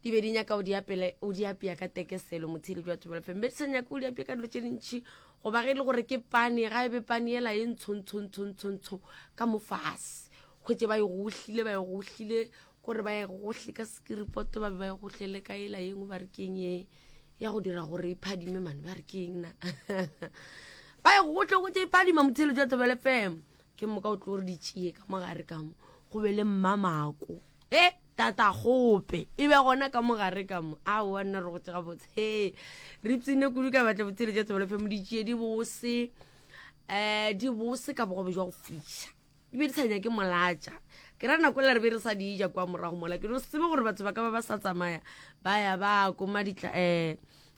di be di nyaka o di apele o di apea ka tekeselo motshedi jwa tšobela feng be di sa nyaka o di apea ka dilo tše dintšhi goba ge e le gore ke pane ga e be pane ela e ntshontshontshontsho ka mo fase kgwetse ba e gohlile ba e gohlile gore ba e gohle ka sekiripoto ba be ba e gohlele ka ela yengwe ba re keng e ya go dira gore e phadime mane ba re keng na ba e gohle go tse e phadima motshedi jwa tšobela feng ke moka o tlo re di tšee ka mogare kamo go be le mmamako e tata gope e be gona ka mogare kamo a wa nna re go tsega botshe re tsene kudu ka batla botshele ja tsebelefe mo di tšee di bose um di bose ka bogobe jwa go fiša di be di sa nyake molatša ke ra nako la re be re sa di ja kwa morago mola ke no sebe gore batho ba ka ba ba sa tsamaya ba ya ba koma ditla um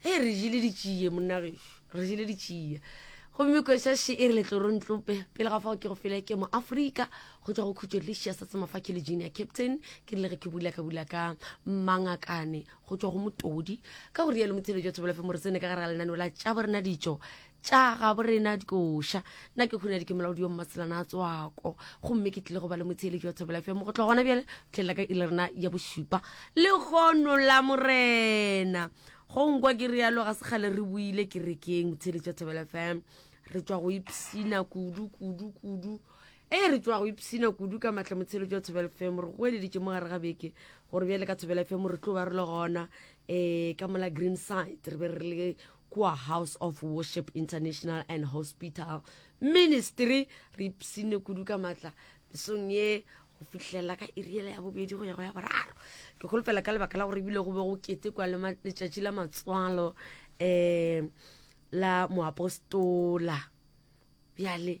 Hei, re jele ditšie, monna gešo, re jele ditšie. Gomme kweša še e re letlorontlope, pele ga fao ke go fele ke mo Afrika, go tšwa go khutšo Lisia sa tsemafa ke le junior captain, ke rile ge ke bula ka bula ka mangakane go tšwa go motodi. Ka go rialo Mothelejwa Thobelafe Moresene ka gare ga lenaneo la Tšabo Rena Ditšo, tša gabo rena dikoša nna ke kgone ke molaodi yo mmatselana a tswako gomme ke tlile go ba le motsheeletši wa thobela fm go tloga gona bjale tlhelela ka e le rena ya bosupa le kgono la morena go nkwa ke realo ga se kgale re buile ke rekeng motsheeletši wa thobela fm re tswa go ipsina kudu kudu kudu e re tswa go ipsina kudu ka maatla motshelo jwa thobela fm re go eleditše mo gare ga beke gore bjale ka thobela fm re tlo ba re le gona um ka mola green side re be re le kua House of Worship International and Hospital Ministry. Re ipsine kudu ka matla mesong ye go fihlelela ka iriela ya bobedi go ya go ya boraro. Ke kgolofela ka lebaka la gore ebile go be go kete kwa le letšatši la matswalo um la moapostola bjale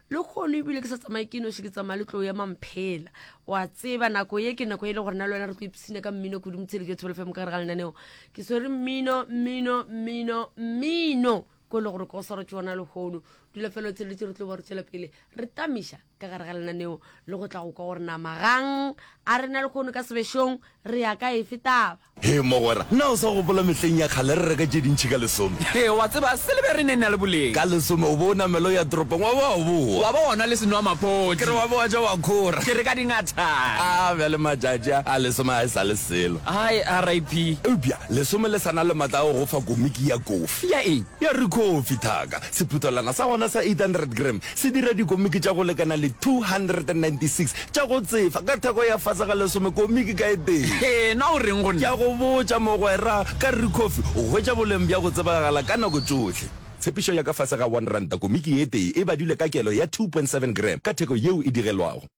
le kgono ebile ke sa tsamaye ke noši ke tsamaya le tlo ya mamphela wa tseba nako ye ke nako e le gore na le wena re tlo ipsina ka mmino kudu motshedi ke thobele fm ka gare ga lenaneo ke swere mmino mmino mmino mmino ko e le gore ko o swara tsona lehono dula fela o tsheletse re tlo ba re tswela pele re tamiša ka gare ga lenaneo le go tla go kwa gore nama gang a re na lehono ka sebešong re ya ka efe taba Hee mogwera, na o sa gopola mehleng ya kgale re reka tše dintši ka lesome? Hee, wa tseba, silebere e ne e na le boleng. Ka lesome o be o namela o ya toropong wa ba wa boa. Wa ba wa nwa le senwamaphodi. Ke re wa be wa ja wa khora. Ke re ka dingathana. A bjale matšatši a, a lesome ga e sa le selo. Hai, RIP. Eupša lesome le sa na le matla a go go fa komiki ya kofi. Ya eng? Ya rikhofi, thaka, sephuthelwana sa gona sa 800 gram. se dira dikomiki tša go lekana le 296 tša go tsefa ka theko ya fase ga lesome komiki ka e tee. Hee, na o reng go nna? Ke a go botša, mogwera, ka ruri Kofi, o hwetša boleng bja go tsebagala ka nako tšohle. Tshepišo ya ka fase ga one ranta komiki e tee e badilwe ka kelo ya 2.7 gram ka theko yeo e digelwago.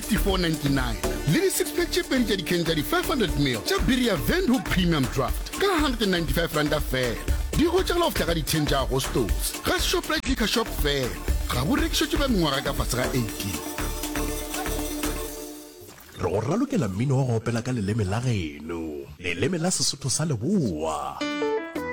54.99 le di-six pack tše pedi tša dikhen tša di-500 mil tša biri ya windhoek premium draft ka 195 ranta fela di hwetšagala go fihla ka di-ten tša agostose ga shoprite liquor shop fela ga bo rekišetšwe ba mengwaga ka fase ga 18. Re go ralokela mmino wa go opela ka leleme la geno, leleme la Sesotho sa Leboa.